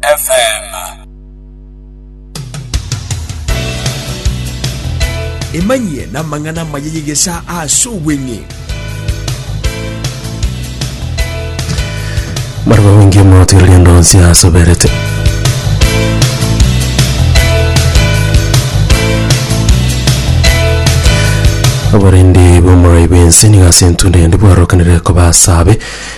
FM. Emanyie namang'ana amaya y'egesaa ase obweng'e. Barabwo abongie omotwe rienda onsi asoberete. Abarindi b'omorai b'ense nigo ase entundo yandi bwarokanire koba asabe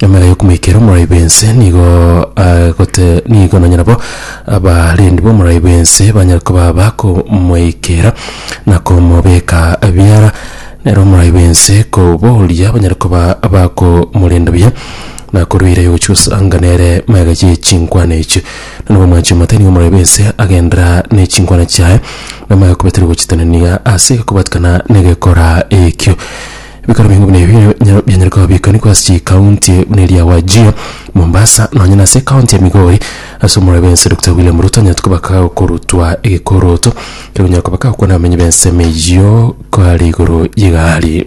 Emera y'okomoikera omorai bw'ense nigo agote nigo nonya nabo abarendi b'omorai bw'ense banyare koba bakomoikera na komobeka biara, nere omorai bw'ense koboria banyare koba bakomorenda buya na koruera yogochia gosanga nere magega ye chinkwana echio. Nonya nabo omwanchi omote nigo omorai bw'ense agendera ne chinkwana chiaye, namaye okobatiga gochitanania ase egekobatikana negekora ekio. Ebikaro binge buna ebi nigo bianyare kobiikanigwa ase chikaunti buna eria Wajir, Mombasa, nonya nase ekaunti ya Migori ase omorwori bw'ense Dokita William Ruto anyarete koba kagokorutwa egekoroto keria okonyara koba kagokwana abamenyi b'ensemo eyio koare igoro y'egari.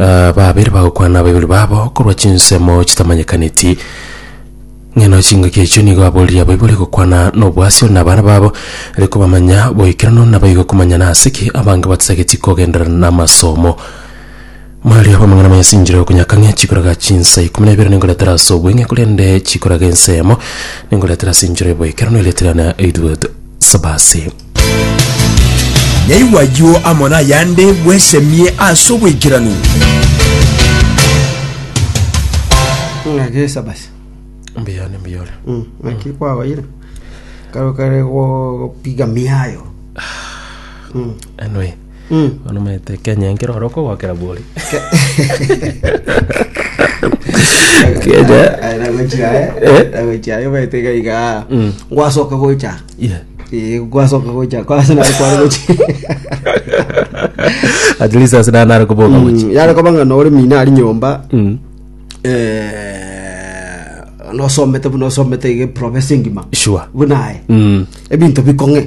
Aa, babere bagokwana abaibori babo korwa chinsemo chitamanyekaneti, ng'ina chingaki echio nigo aboririe abaibori gokwana nobwasio na abana babo, are kobamanya boikeranu, na baige komanya nase ki abange batatageti kogenderera namasomo. Maria bw'amang'ana mayasinchire okonyaka ng'a chikoraga chinsa ikomi na ibere ningoretera ase obweng'e, korende chikoraga ensa eyemo ningoretera ase enchera y'oboikeranu, erio etirana eidwe sabasi. Yaigwa ayio amo nayande, bwesemie ase oboikeranu. Ng'a gesa basi. Mbuya ne mbuya ore. Mm, Naki kwaoire. Karo kare go- gopiga miayo. Anyway. Mm. Bono omanyete Kenya enkero ore okogokera bori. Kenya. Aye nagochia aye, Eh? nagochia aye omanyete iga iga Mm. gwasoka gocha Yeah. Eh, gwasoka gocha kwase nari kware gocha At least ase nana are koboka gochi. Mm, yare koba ng'a nore mina ari nyomba Mm. eh, nosomete buna osomete iga province engima Sure. buna aye Mm. ebinto bikong'e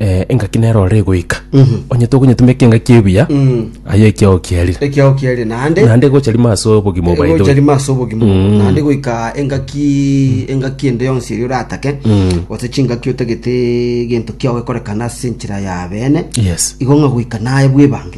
eh, engaki nero ore goika onye tokonyetumeka engaki ebuya aye ekiao kiarire ekiao kiarire naende naende gocha rimo ase obogima Eh, obaito gocha rimo ase obogima naende goika engaki engaki ende yonsi eri oratake gose chingaki otagete gento kiao gekorekana ase enchera ya bene yes igo ng'a goika naye bwebange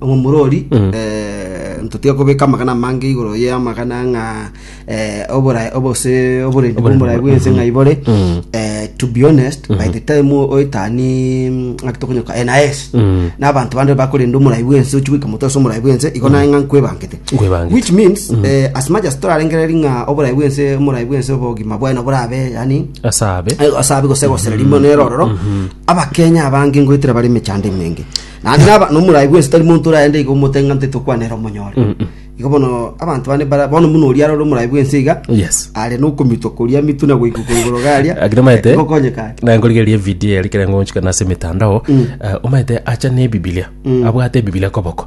omomurori Mm. eh, ntotiga kobeka amagana amange igoro ye amagana ng'a eh, oborai obose oborendi Oborendi bw'omorai bwa- bw'ense ng'a ibore Mm. eh, to be honest by the time o- oetani mm, ng'aki tokonyoka NIS Mm. na abanto bande bakorenda omorai bw'ense ochi goika motosa omorai bw'ense igo naye ng'a nkwebangete Nkwebangete. which means eh, as much as torarengereri ng'a oborai bw'ense omorai bw'ense obogima bweno borabe yani asabe asabe gosegosera rimo nerororo abakenya abange ngoetera bari emechando emenge Naende naba nomorai bwensi tari monto oraende iga omotenge ng'a ntitokwana ere omonyore. Mm, mm. Igo bono abanto bane bara bono muno oria arore omorai bwensi iga Yes. are nokomitwa koria amitu na goika korigoro garia. Lakini maete Gokonyeka are. na nkorigeria video yari kere ngonchika nase emitandao eh, omaete acha ne ebibilia abwate ebibilia koboko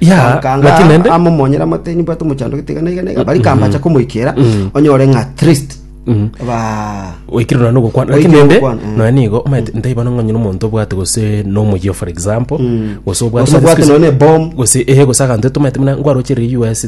Ya, Bankanga lakini nende ama omonyera amateni bwate omochandoki tiga na iga na iga bari kambacha komoikera onyore ng'a at least ba oikire nonye ogokwana lakini Oikire nende ogokwana, eh. nonye nigo omanyete ntaiba nonye onye omonto obwate gose nomoyio for example gose obwate Gose obwate nonye ebom. gose eh gose aganto tomanyete buna ngwarocherire US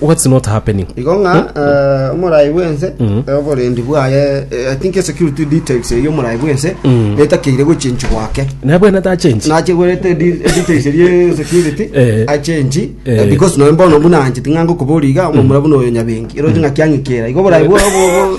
What's not happening? igo ng'a eh, omorai bwense eh, oborendi bwaye eh, i think security details eyo omorai bwense etakeire gochenchi gwake Naye bwene tachenji. nachigorete di- details erie security Eh. achenchi Eh. eh, because noe mbono buna anchete ng'a ngokoboria iga omomura buna oyo nyabengi eroche ng'a kiang'ikera igo oborai bwa- bwa- bwa-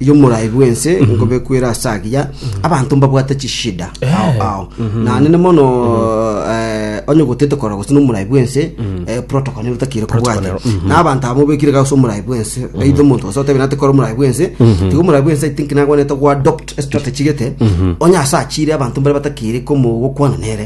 yomorai bwense nkobekwera ase agiya abanto mbabwate chishida ao ao nanene mono eh, onye gotete kora gose nomorai bwense eh, protocol nero takire kobwate na abanto abo mobekire gase omorai bwense eitho omonto gose otabe nate kora omorai bwense tiga omorai bwense i think nagwanete go adopt a strategy gete onye ase achire abanto mbare batakire komo gokwana nere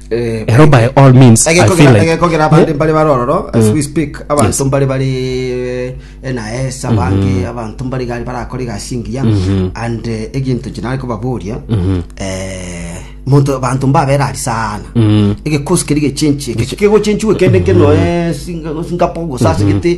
Hello by all means, I feel like- egekogera abande mbare bare ororo as we speak abanto mbare bare enaesa abange abanto mbare gari barakora egasi engiya and eh, eginto chinare kobaboria eh, monto abanto mbabera ari sana egekosi keri gechenchi eke kegochenchiwe kende kenoe singapogo sase gete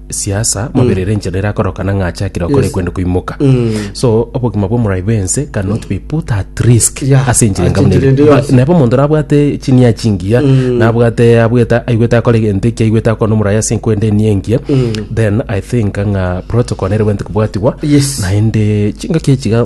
siasa maberere enchera erakorokana ng'a achakire okore Yes. kwende koimoka Mm. so obogima bw'omorai bwense cannot be put at risk Yeah, ase enchera ase enchera ende enkamuna yonsi. nabo omonto nabwate chinia chingiya nabwate abwete aigwete akore egento eki aigwete akona omorai ase enkwende eni engiya then i think ng'a protocol nere bwente kobwatigwa Yes. naende chingaki echiga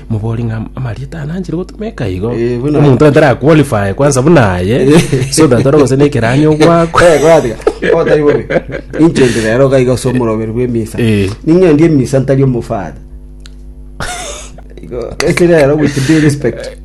mobori ng'a amarieta aya nanchire gotumeka igo Eh, buna- omonto atara qualify kwanza buna aye so that ore gose nekeranyo gwako otari bobe inchende rero gaiga ase omoroberi bw'emisa Eh. ning'endi emisa ntari omofada Igo, ese rero with due respect